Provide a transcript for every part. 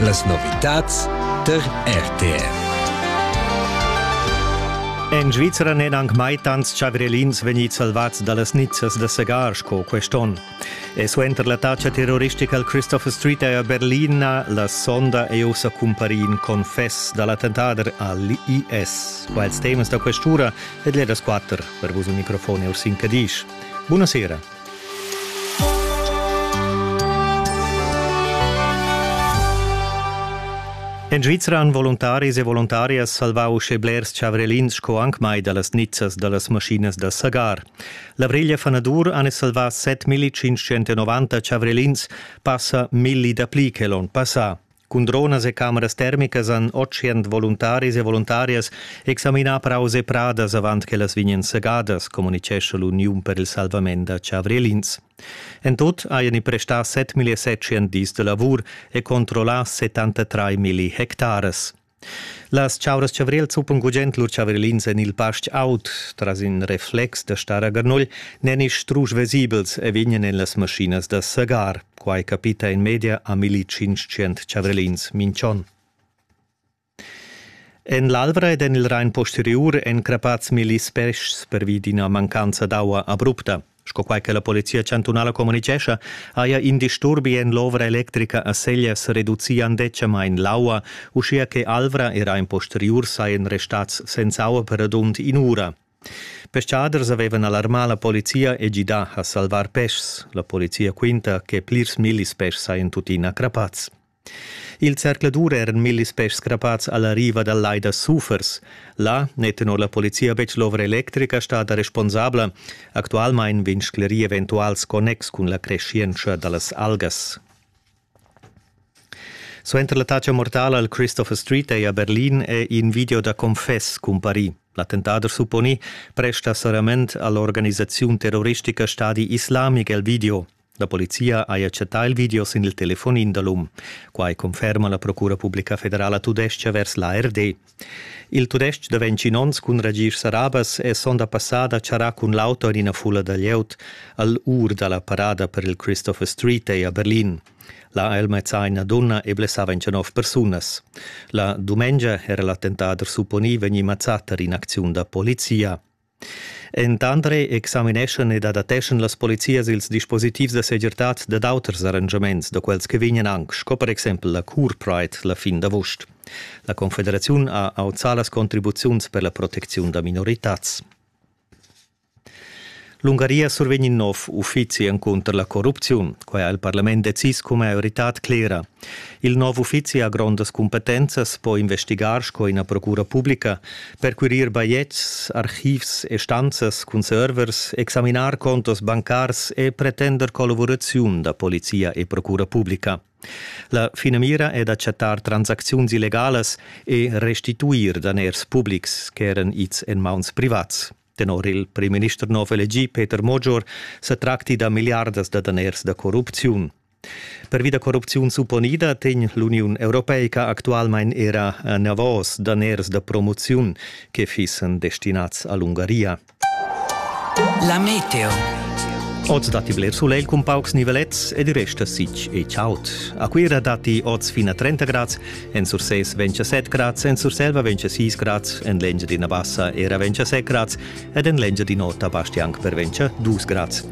Las novitads der RTR. En Svizra n'èn anc mai tants chavrelins vegnids salvads da las nizzas da segar sco quest'onn. E suenter l'attacca terroristica al Christopher Street a Berlin, la sonda è ussa cumparì in confess da l'attentader al IS. Qua ils temas da questura ed ledas 4 per vus un microfon e Ursin Cadisch. Buonasera. En Svizra han voluntaris e voluntarias salvau uschè blers chavrelins sco anc mai dallas nizzas dallas maschinas da sagar. La Vriglia Fanadur han salvà 7.590 chavrelins, passa milli dapli che l'onn passà. Cun dronas e cameras termicas han otschient voluntaris e voluntarias examinà praus e pradas avant ch'ellas vegnan segadas, communitgescha l'Uniun per il salvament da chavrielins. En tut hajan i prestà 7.700 dis da lavur e controllà 73.000 hectaras. Las chauras chavriel zuppan gugent lur chavarilins en il pastg aut. Tras in reflex da star a garnugl n'èn isch strusch vesibels e vegnan en las maschinas da sagar. Quai capita in media a 1500 chavarilins minchon. En l'Alvra ed en il Rain posteriur èn crappads milli speschs pervi d'ina mancanza d'aua abrupta. Sco quai che la Polizia chantunala communitgescha, haja in disturbi en l'ovra electrica a Seglias reduzian decemain l'aua, uschia che Alvra era en posteriur sajan restads senza aua per radund in'ura. Peschaders avevan alarmà la polizia e gidà a salvar peschs. La polizia quinta che plirs millis peschs sajan tuttina crappads. Il zercladur eran millis peschs crappads a la riva dal lai da Sufers. Là n'è tenor la polizia betg l'ovra electrica stada responsabla. Actualmain vegn sclerì eventuals connex cun la creschientscha da las algas. Suenter l'attacca mortala al Christopher Street Day a Berlin è in video da confess cumparì. L'attentader supponì presta sarament all'organisaziun terroristica Stadi Islamic el video. La polizia haja chattà il video sin il telefonin da l'um. Quai conferma la Procura publica federala tudestga vers l'ARD. Il tudestg da 21 onns cun ragisch sarabas è sonda passada charrà cun l'auto en ina fulla da glieud al ur da la parada per il Christopher Street a Berlin. La Elmezza ina donna e blessava 29 persunas. La dumengia era l'attentat supponì vegnì mazzato in acziun da polizia. Entandre examineschan ed adateschan las polizias ils dispositivs da segirtad dad auters arrangiaments da quels che vegnan anc, sco per exempel la Cure Pride la fin d'avust. La Confederaziun ha auzà las contribuziuns per la protecziun da minoritads. L'Ungaria survegn in nov uffizi encunter la corrupziun. Quai ha il parlament decis cun maioritad clera. Il nov uffizi ha grondas cumpetenzas, po investigar sco ina procura publica, perquerir bajetgs, archivs e stanzas cun servers, examinar contos bancars e pretender collavuraziun da polizia e procura publica. La finamira è d'acceptar transacziuns illegalas e restituir daners publics ch'eran ids en mauns privats. Tenor il primminister nov elegì Peter Mogior sa tracti da milliardas da daners da corrupziun. Pervi da corrupziun supponida tegn l'Uniun Europeica actualmain era anavos daners da promoziun che fissen destinats a l'Ungaria. La meteo. Oz datti bler sulegl cun paucs nivelets ed il resta sic e chaud. A Cuira datti oz fin a 30 grads En Sursés ventscha set grads, en Surselva ventscha sis grads, en l'Engiadina Bassa era ventscha set grads ed en l'Engiadin'Ota basti anc per ventscha dus grads.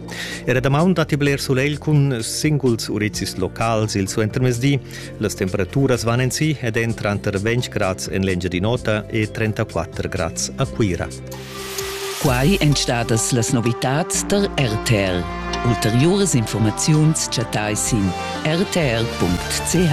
Era damaun datti bler sulegl cun singuls urizis locals il suentermezdi. Las temperaturas van en si ed èn tranter 20 grads en l'Engiadin'Ota e 34 grads a Cuira. Quai èn stadas las novitads der RTL. Ulteriuras informaziuns chattai sin rtl.ch.